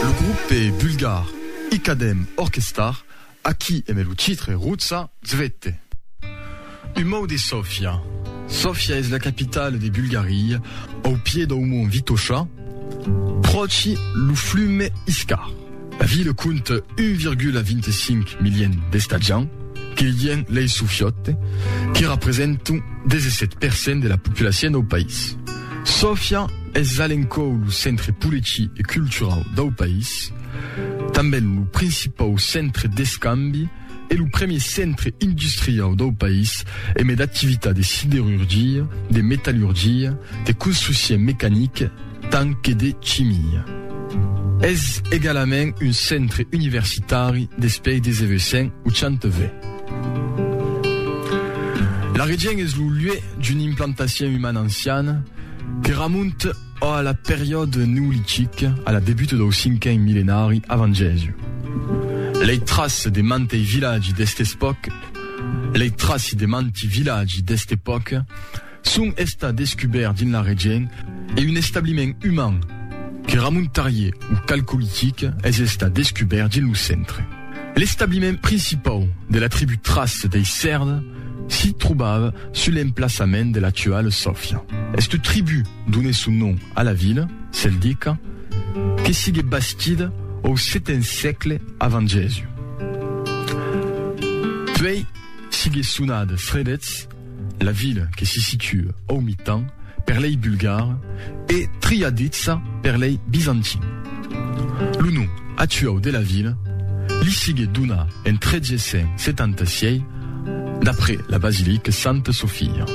Lo grupe bulgar Ikadem Orkestar, a qui emè lo titre Rutsa Zvete. Un mot de Sofia. Sofia es la capitala de Bulgaria, au pied dau mont Vitosha, pròchi lo flume Iskar. La vila compta 1,25 milion d'estatjants, que lien lei sofiote, que representan 17 per cent de la populacion dau país. Sofia es a l'encòu lo centre poleci e culturau dau país, tanben lo principau centre d'escambi e lo premier centre industriau dau país e me d'activitat de siderurgia, de metallurgia, de construccion mecanica tant que de chimia. Es egalament un centre universitari despei des evesents 80 ve. La Regent es lo luè d'una implantacion umana anciana que ramonta a la periòde neolitice a la debuta dau cinquen millenari avant Jèsu. Lei traci de mantei vilatgi d'est'espòca lei traci de manti vilatgi d'est'epòca son estat descubèrt dins la region e un establiment uman que ramontarie au Calcolitic es estat descubèrt dins lo centre. L'establiment principau de la tribú Trace dei Sèrds s'i trobava sus l'emplaçament de l'actuala Sòfia. Esta tribú donèt son nom a la vila celtica que siguèt bastida au seten sègle avant Jèsus. Puèi siguèt sonada Sredets. La vila que se situa au mitan per lei bulgars e triaditza per lei bizantins. Lo nom actuau de la vila li sigué donat en 376 d'après la basilica Santa Sofia.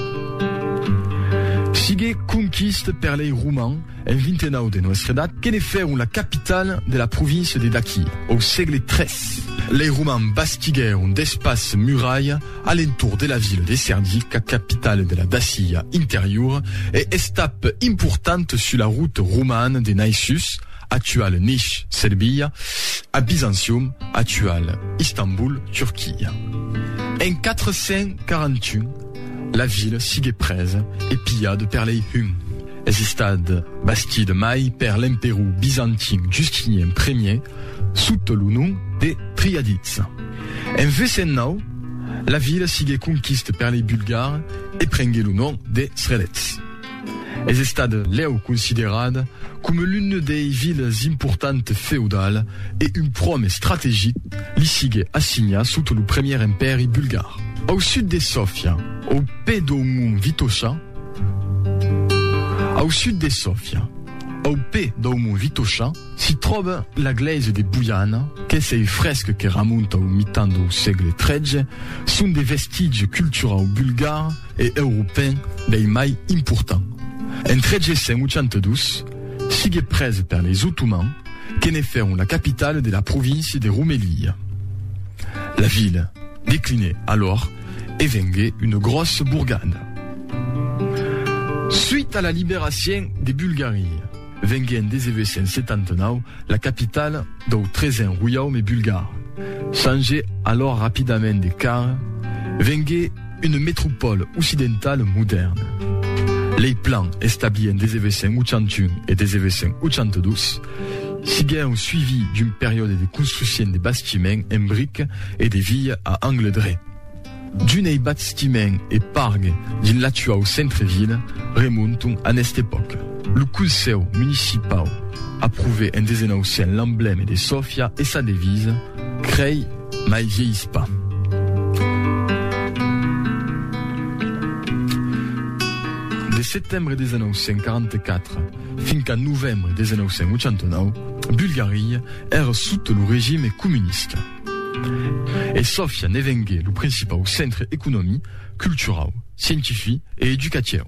Sigué conquista per lei romans en 29 de Noèstra Edat que ne fèron la capitala de la província de Daquia au sègle 3. Lei romans bastiguèron d'espaças muralha A l'entorn de la vila de Cernica, capitala de la Dacia Interiora, e estap importanta sus la ruta romana de Naissus, actual Nish, Serbia, a Byzantium, actual Istanbul, Turquia. En 441, la vila sigué presa e pilhada per lei Hun. Es estat bastida mai per l'emperor bizantin Justinien Ier, sota lo nom de Triadids. En vesen nau, la vila sigué conquista per lei Bulgars e prengué lo nom de Srelets. Es estat lèu considerat coma l'una dei vilas importante feudal e un prom estrategic li sigué assignat sota lo Premier Empèri Bulgar. Au sud de Sofia, au pè dau mont Vitosha, Au sud de Sofia, au pè dau mont Vitosha, S'i tròba la glèisa de Boiana, qu'es ei fresc que ramonta au mitan dau sègle tretze, son de vestigi culturau bulgar e europèn dei mai important. En 382, siguec presa per leis Otomans que ne fèron la capitala de la província de Romelia. La vila declinèt alòr e vengué una gròssa borgada suit a la liberacion de Bulgaria. Vengué en 1879 la capitala dau Tresen Roiaume Bulgar. Changé alòr rapidament de cara, vengué una metropòla occidentala modèrna. Lei plans establits en 1881 e 1882 siguèron suivis d'un periòde de construccion de bastiments en brica e de vias a angle dret. D'un ei bastiment e parc dins l'actuau centre-vila remonton a nesta epòca. Lo Consèu Municipau aprovè en 1900 l'emblème de Sofia e sa devisa, Crei mai vielhis pas. De setembre 1944 fin qu'a novembre 1989, Bulgaria èra sota lo regime comunista. E Sofia ne vengué lo principau centre economic, culturau, scientific e educatieu.